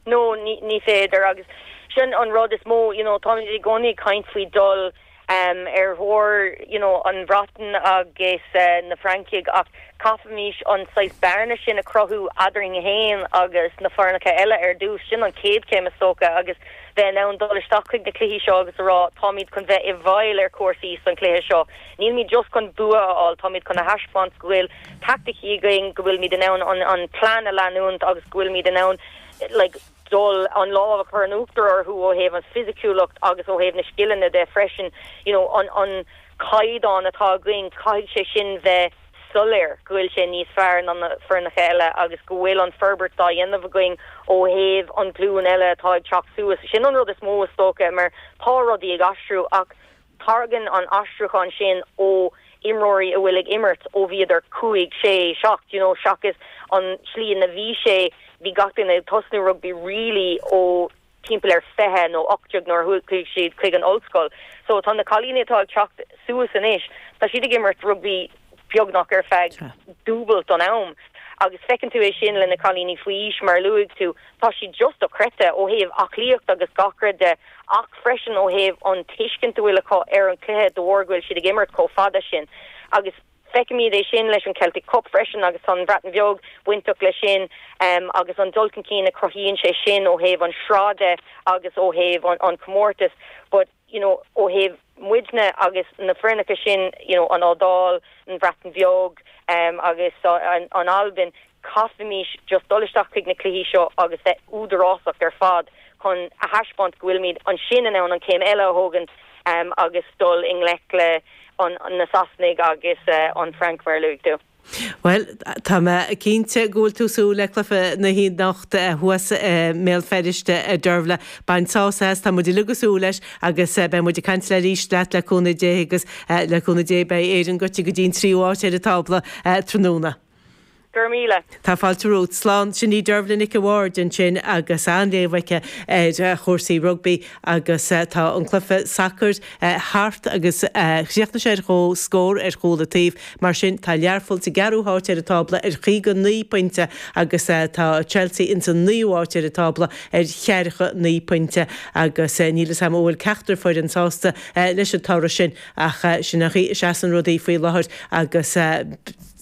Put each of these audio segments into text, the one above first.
No, ní, ní féidir agus sin an rud is mó, you know, táimid i gcónaí ag caint faoi dul, em, ar thóir, you know, an Bhreatain agus, eh, na Francaigh ach caithfimís an saghas bearna sin a chruthú eadarainn fhéin agus na foirneacha eile ar dtús, sin an chéad chéim is dócha agus bheith in ann dul isteach chuig na cluichí seo agus a rá táimid chun bheith i bhfeighil ar chúrsaí san cluiche seo. Nílimid just chun bua a fháil, táimid chun a thaispeáint go bhfuil taicticí againn, go bhfuilimid in ann an plean a leanúint agus go bhfuilimid in ann dul an lámh a chur in uachtar orthu ó thaobh an fisiciúlacht agus ó thaobh na scileanna de freisin. You know an caighdeán atá againn, caithfidh sé sin bheith soiléir go bhfuil sé níos fearr ná na foirneacha eile agus go bhfuil an forbairt dá dhéanamh againn ó thaobh an glúin eile atá ag teacht suas. Sin an rud is mó is dócha mar tá rudaí ag aistriú ach, Tairgeann an aistriúchán sin ó imreoirí a bhfuil ag imirt ó bhíodar cúig, sé, seacht, you know, seachas an tslí ina bhí sé, bhí gach duine ag tosnú rugbaí really ó timpeall ar 20 nó 18 nuair a chuaigh siad chuig an ollscoil. So tá na cailíní atá ag teacht suas anois, tá siad ag imirt rugbaí beagnach ar feadh dúbailt an am. Agus feiceann tú é sin le na cailíní faoi aois, mar a luaigh tú, tá siad just dochreidte ó thaobh aclaíocht agus gach rud de ach freisin ó thaobh an tuiscint a bhfuil acu ar an chluiche de bharr go bhfuil siad ag imirt chomh fada sin. Agus feicimid é sin leis an Celtic Cup freisin agus tá an Bhreatain Bheag bainteach leis sin agus an dul chun cinn a chruthaíonn sé sin ó thaobh an sraith de agus ó thaobh an chomórtais. But. you know ó thaobh muidne agus na foirneacha sin you know an Iodáil, an Bhreatain Bheag em agus an Albain caithfimís just dul isteach chuig na cluichí seo agus bheith údarásach ar fad chun a thaispeáint go bhfuilimid ansin in ann an chéim eile a thógaint em agus dul i ngleic le an na Sasanaigh agus eh an Frainc mar a luaigh tú. Bhuel, tá mé cinnte go bhfuil tú ag súil le cluiche na hanocht thuas i mBéal Feirste, a Dearbhla. Bain sás as, tá muid uilig ag súil leis agus beidh muid ag caint arís leat, le cúnamh Dé, agus le cúnamh Dé beidh Éireann gaibhte go dtí an tríú háit ar an tábla tráthnóna. Go raibh míle. Tá fáilte romhat. Slán. Sin í Dearbhla Nic an Bhaird ansin agus an-léamh aici ar chúrsaí rugbaí. agus tá an cluiche sacair thart agus chríochnaigh sé ar chomhscór ar chúl an taobh. Mar sin, tá Learpholl sa gceathrú háit ar an tábla ar chaoga naoi pointe agus tá Chelsea insan naoú háit ar an tábla ar cheathracha naoi pointe agus níl 'fhios a'm an bhfuil ceachtar foireann sásta leis an toradh sin ach sin an chaoi a seasann rudaí faoi láthair agus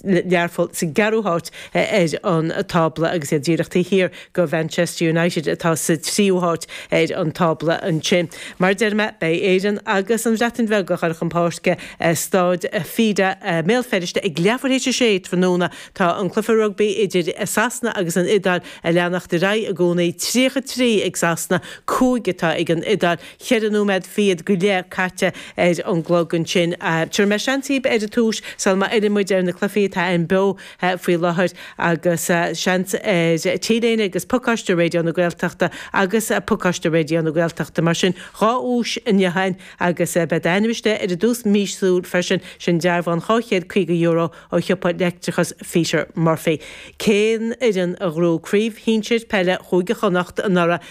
Learpholl sa gceathrú háit ar an tábla agus iad díreach taobh thiar de Mhanchester United atá sa tríú háit ar an tábla ansin. Mar a deir mé, beidh Éirinn agus an Bhreatain Bheag ag goil chun páirce i Staid Affidea i mBéal Feirste ag leathuair théis a sé tráthnóna. Tá an cluiche rugbaí idir Sasana agus an Iodáil ag leanacht ar aghaidh i gcónaí, tríocha trí ag Sasana, cúig atá ag an Iodáil. Cheithre nóiméad fichead go leith caite ar an gclog ansin. Tabharfaidh mé seans dhaoibh ar an duais sul má fhilleann muid ar na cluichí atá ann beo faoi láthair agus seans ar t-léine agus pacáiste Raidió na Gaeltachta agus pacáiste Raidió na Gaeltachta. Mar sin, dhá dhuais an iotháin agus beidh d'ainm istigh ar an duais mhíosúil freisin, sin dearbhán €250 ó shiopa leictreachais Pheter Murphy. Cén fhoireann a ghnóthaigh craobh shinsir peile Chúige Chonnacht anuraidh?